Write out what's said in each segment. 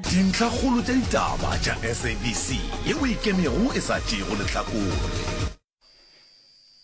Dintlhakgolo tša ditaba tša SABC ye o e kemego e sa tšeego lehlakore.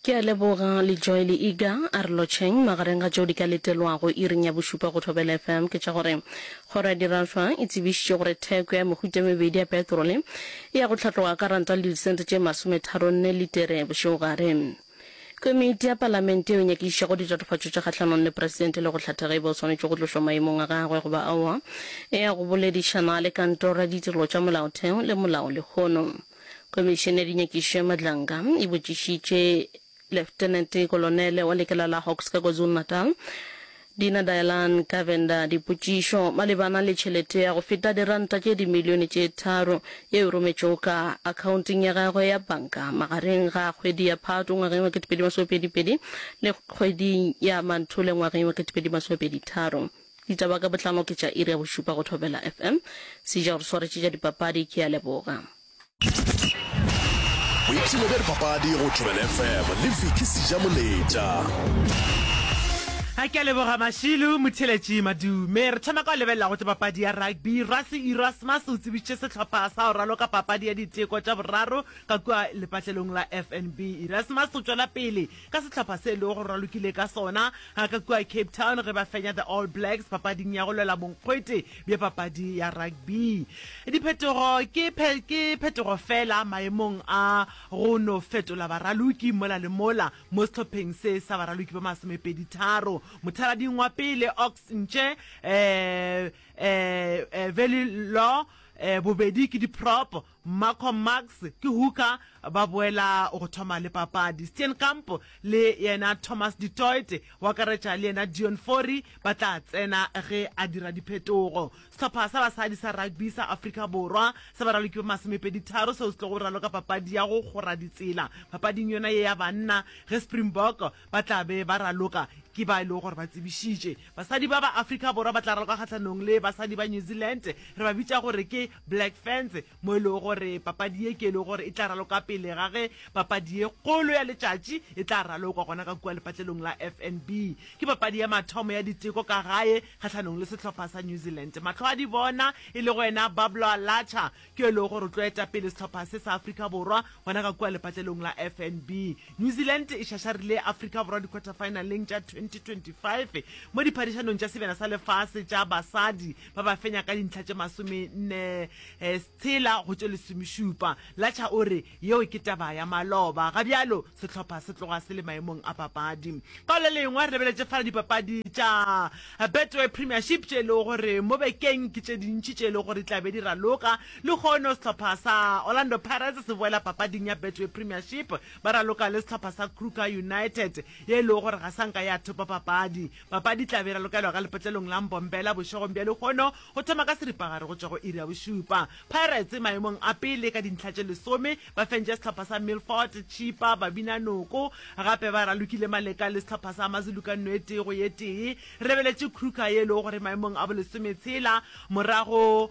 Ke a leboga Lejoy le Iga. Arolotšheng magareng ga tšeo di ka letelwago iring ya bošupa go Thobela FM ke tša gore Kgoro ya Dirašwa e tsebišitše gore theko ya mehuta e mebedi ya petrole e ya go hlatloga ka ranta le disente tše masometharo-nne litere bošegogare. Komiti ya Palamente yeo e nyakišišago ditatofatšo tše kgahlanong le Presidente le go hlatha ge e ba o swanetše go tlošwa maemong a gagwe goba aowa, e ya go boledišana le Kantoro ya Ditirelo tša Molaotheo le Molao lehono. Komišene ya Dinyakišišo ya Madlanka e botšišitše Leftenete Kolonele wa lekala la Hawks ka KwaZulu-Natal, Dina Dialan ka Venda, Dipotšišo malebana le tšhelete ya go feta diranta tše dimilione tše tharo yeo e rometšwego ka akhaonteng ya gagwe ya banka magareng ga kgwedi ya Phato ngwageng wa 2022 le kgwedi ya Manthole ngwageng wa 2023. Ditaba ka botlalo ke tša iri ya bošupa go Thobela FM. Sejagoswaretši tša dipapadi ke a leboga. boipshino bja dipapadi go tobel fm le viki seja moletša a ke a leboga mašilo motheletši madume re thoma ka go lebelela go tse papadi ya rugby rasi erasmus o tsebišitše sehlopha sa go raloka papadi ya diteko tša boraro ka kua lepatlelong la fnb erasmus o tšwela pele ka sehlopha se e lego gore ba lokile ka sona ga ka kua Cape Town ge ba fenya the All Blacks papading ya go lwela bonkgwete bja papadi ya rugby. Diphetogo ke phe, ke phetogo fela maemong a go no fetola baraloki mola le mola mo sehlopheng se sa baraloki ba masomepeditharo. Mothalading wa pele Ox Nche, eh, eh, eh, Veli Law, eh, bobedi ke di-prop, Malcolm Marx ke Hooker ba boela go thoma le papadi. Steenkamp le yena Thomas du Toit, go akaretša le yena Deon Fourie, ba tla tsena ge a dira diphetogo. Sehlopha sa basadi sa rugby sa Afrika Borwa se ba raloki ba masomepeditharo seo se tlogo raloka papadi ya go kgora ditsela papading yona ye ya banna ge Springbok ba tla be ba raloka ke ba e lego gore ba tsebišitše. Basadi ba ba Afrika Borwa ba tla raloka kgahlanong le basadi ba New Zealand, re ba bitša gore ke Black Ferns, mo e lego gore papadi ye ke e lego gore e tla raloka pele ga ge papadi ye kgolo ya letšatši e tla ralokwa gona ka kua lepatlelong la FNB. Ke papadi ya mathomo ya diteko ka gae kgahlanong le sehlopha sa New Zealand. Mahlo a dibona e lego yena Bablo Alacha ke yo e lego gore o tlo eta pele sehlopha se sa Afrika Borwa gona ka kua lepatlelong la FNB. New Zealand e šašarile Afrika Borwa di-quarter-finaleng tša 2025 mo diphadišanong tša sebjana sa lefase tša basadi ba ba fenya ka dintlha tše masomenne eh, setshela go tše lesomešupa latšha o re yeo ke taba ya maloba ga bjalo sehlopha se tloga se le maemong a papadi ka le lengwe re lebeletše fala dipapadi tša eh, betway premiership tše e lego gore mo bekeng ke tše dintši tše e lego gore di tlabe di raloka le kgono sehlopha sa orlando pirates se boela papading ya betway premiership ba raloka le sehlopha sa kruger united ye e lego gore ga sanka ya thopa papadi Papadi e tla be e ralokelwa ka lepatlelong la Mbombela bošegong bja lehono go thoma ka seripagare go tšwa go iri ya bošupa. Pirates e maemong a pele ka dintlha tše lesome, ba fentše sehlopha sa Milford, Chippa, Babina Noko. Gape ba ralokile maleka le sehlopha sa Amazulu ka nno e tee go ye tee. Re lebeletše Kruger Yellow gore e maemong a bolesometshela morago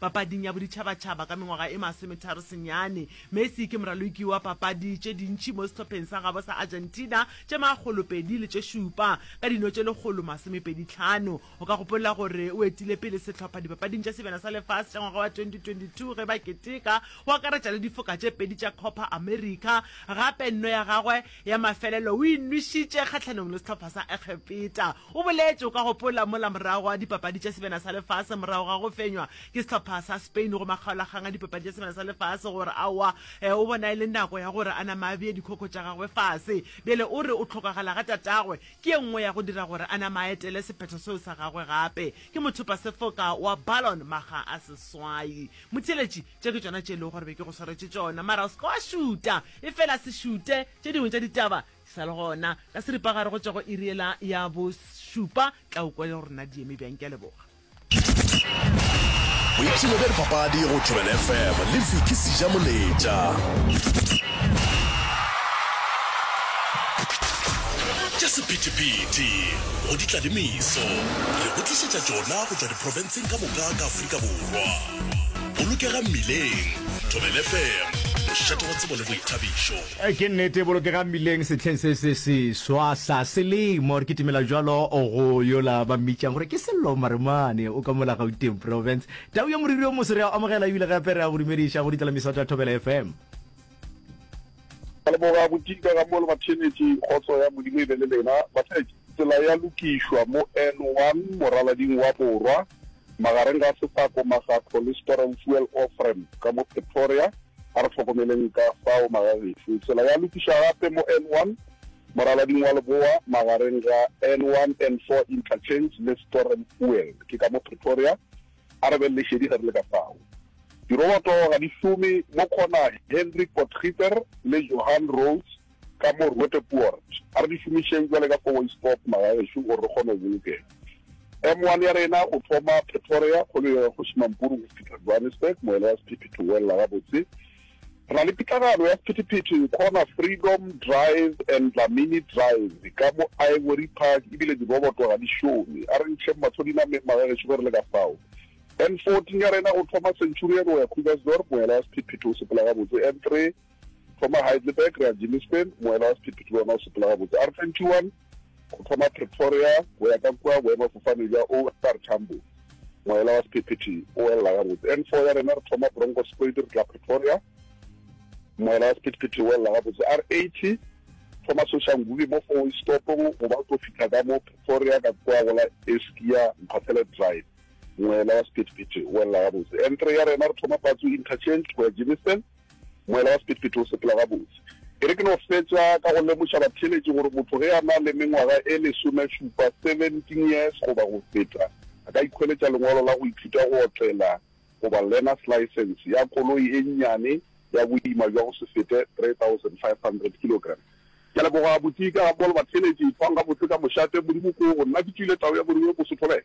Papading ya Boditšhabatšhaba ka mengwaga e masometharo senyane, Messi ke moraloki wa papadi tše dintši mo sehlopheng sa gabo sa Argentina, tše makgolo pedi le tše šupa, ka dino tše lekgolo masomepedi tlhano. O ka gopolla gore o etile pele sehlopha Dipapading tša Sebjana sa Lefase tša ngwaga wa 2022 ge ba keteka go akaretša le difoka tše pedi tša Copa America. Gape nno ya gagwe Ya mafelelo, o inwešitše kgahlanong le sehlopha sa Egepeta. O boletše, O ka gopola mola morago ga Dipapadi tša Sebjana sa Lefase, morago ga go fenywa ke sehlopha sa Spain go makgaolakgang a Dipapadi tša Sebjana sa Lefase, gore aowa, ee, o bona e le nako ya gore a nama a bee dikhokho tša gagwe fase. Bjale o re o hlokagala ga tatagwe ke ye nngwe ya go dira gore a nama a etele sephetho seo sa gagwe gape. Ke mothopasefoka wa Ballon, makga a seswai. Motheeletši, Tše ke tšona tše e lego gore be ke go swaretše tšona, mara o se ke wa šuta. Efela se šute tše dingwe tša ditaba di sa le gona. Ka seripagare go tšwa go iri yela ya bošupa tla o kwa le rena di eme bjang. Ke a leboga. Boipshino bja dipapadi go Thobela FM le Vicky Sijamoletša. Tša sephethephethe go ditlalemiso re go tlišetša tšona go tšwa diprofenseng ka moka ka Afrika Borwa. Bolokega Mmileng, Thobel FM, mošate wa tsebo le boithabišo. Ke nnete, Bolokega Mmileng sehleng se se seswa sa selemo. Re kitimela bjalo go yola ba mmitšang gore ke Sello Maremane, o ka mola Gauteng Province. Tau ya moriri o moso re a o amogela ebile gape re a go dumediša go ditlelamiso tša Thobela FM. Ka leboga go dika ga mo le bathenetši, kgotso ya Modimo e be le lena. Bathenetši, tsela ya lokišwa mo N1, moralading wa borwa. Magareng ga sefako ma ga Polysporen Fuel Oil Frame ka mo Pretoria, a re hlokomeleng ka fao magagešo. Tsela ya lokišwa gape mo N1, moralading wa leboa magareng ga N1, N4 Interchange le Sporren Fuel ke ka mo Pretoria, a re beng lešedi ge re le ka fao. Diroboto ga di šome mo Khona, Hendrik Potgieter le Johan Roos Ka mo Roote Poort, a re di šomišeng bjale ka Koweisport magagešu gore re kgone go bolokega. M1 ya rena go thoma Pretoria, kgolo ya Kgoši Mampuru go fihla Johannesburg, moela wa Sephethephethe o boelela gabotse. Re na le pitlagano ya Sephethephethe go kgona Freedom Drive and Dlamini Drive ka mo Ivory Park e bile diroboto ga di šome. A re ntšheng mahlo dinameng magagešu ge re le ka fao. N14 ya rena go thoma Centurion go ya Krugersdorp, moela wa Sephethephethe o sepela gabotse. N3. thoma Heidelberg re ya Germiston, moela wa sephetho ke wona o sepela gabotse. R21 go thoma Pretoria go ya ka kua boemafofane bja OR Tambo, moela wa sephetho o elela gabotse. N4 ya rena re thoma Bronkhorstspruit re tla Pretoria, moela wa sephetho o elela gabotse. R80 thoma Soshanguve mo four way stopong goba o tlo fitlha ka mo Pretoria ka kua go la Eskia Mphathele Drive, moela wa sephetho o elela gabotse. N3 ya rena re thoma Patsu Interchange go ya Germiston, Moela wa sephethephethe o sepela gabotse. E re ke no fetša ka go lemoša batheeletši gore motho ge a na le mengwaga e lesomešupa, 17 years, goba go feta, a ka ikhweletša lengwalo la go ithuta go otlela goba learner's licence ya koloi e nnyane ya boima bja go se fete 3,500 kilogram. Ke a leboga, Botika, Paul, batheeletši, ithwang gabotse ka mošate. Modimo ke wo go nna. Ke tšeile tau ya Modimo, Mosotho, le.